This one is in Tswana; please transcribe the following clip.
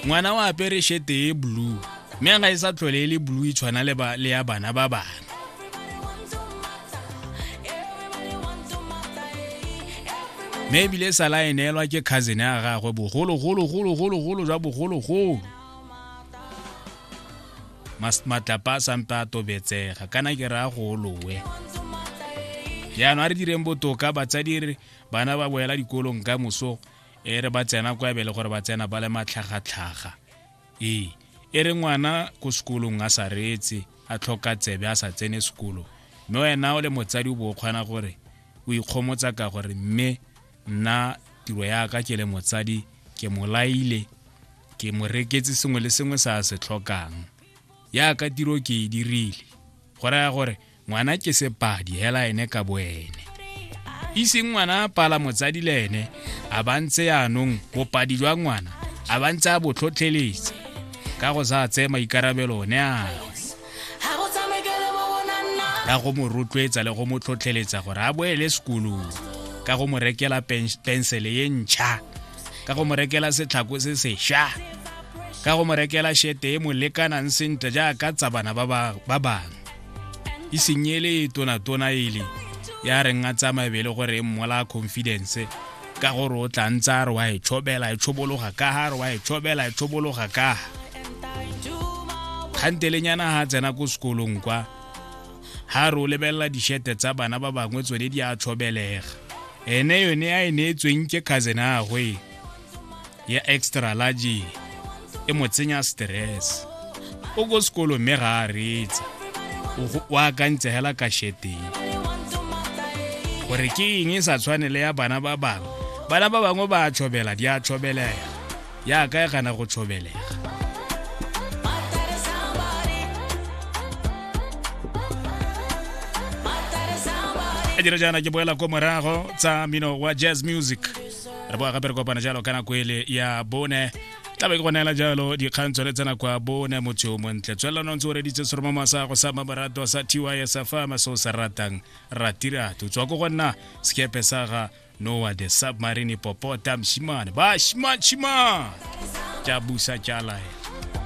ngwana wa apere shete e blue mme ga e sa tlhole e le blue e tshwana le ya bana ba bana mme ebile e sala e neelwa ke cousin ya gagwe bogologologologologolo jwa bogologolo matlapa a sampe a tobetsega kana ke raya golowe jaanong a re direng botoka batsadi re bana ba boela dikolong ka moso e re ba tsena kwa ebe le gore ba tsena ba le matlhagatlhaga ee e re ngwana ko sekolong a sa reetse a tlhoka tsebe a sa tsene sekolo mme wena o le motsadi o bo o kgona gore o ikgomotsa ka gore mme nna tiro yaka ke le motsadi ke mo laile ke mo reketse sengwe le sengwe se a se tlhokang yaka tiro ke e dirile go raya gore ngwana ke sepadi hela ene ka boene e seng ngwana a pala motsadi le ene a ba ntse yaanong bopadi jwa ngwana a ba ntse a botlhotlheletse ka go sa tseye maikarabelo one ao ka go mo rotloetsa le go mo tlhotlheletsa gore a boele sekolong ka go mo rekela pensele ye ntšha ka go mo rekela setlhako se sešwa ka go mo rekela shete e mo lekanang sentle jaaka tsa bana ba bangwe e senyele tona-tona ele ya reng a tsaya mabele gore e mmola confidence ka gore o tla ntse a re wa e tshobela e tshobologa ka ga re wa e tshobela e tshobologa ka kgantelenyana ga tsena ko sekolong kwa ga re o lebelela dishete tsa bana ba bangwe tsone di a tshobelega ene yone a e neetsweng ke cousin agwe ya extra large e mo tsenya stress o ko sekolo mme ga a reetsa o akantse hela ka sheteng gore ke eng e sa tshwane le ya bana ba bangwe bana ba bangwe ba a tshobela di a tshobelega yaka e gana go tshobelega a dira jaana ke boela ko morago tsa mino wa jazz music re boa gape re kopana jalo ka nako ele ya bone tla be ke go neela jalo dikgang tsone tsena kwa bone motho yo montle tswelelano ntse o reditse seromamo sa go sa mamorato sa tys fama se o se ratang ratirato tswa ko go nna sekepe sa ga noa the submarine popota mshimane ba shima shima tša busa tša laela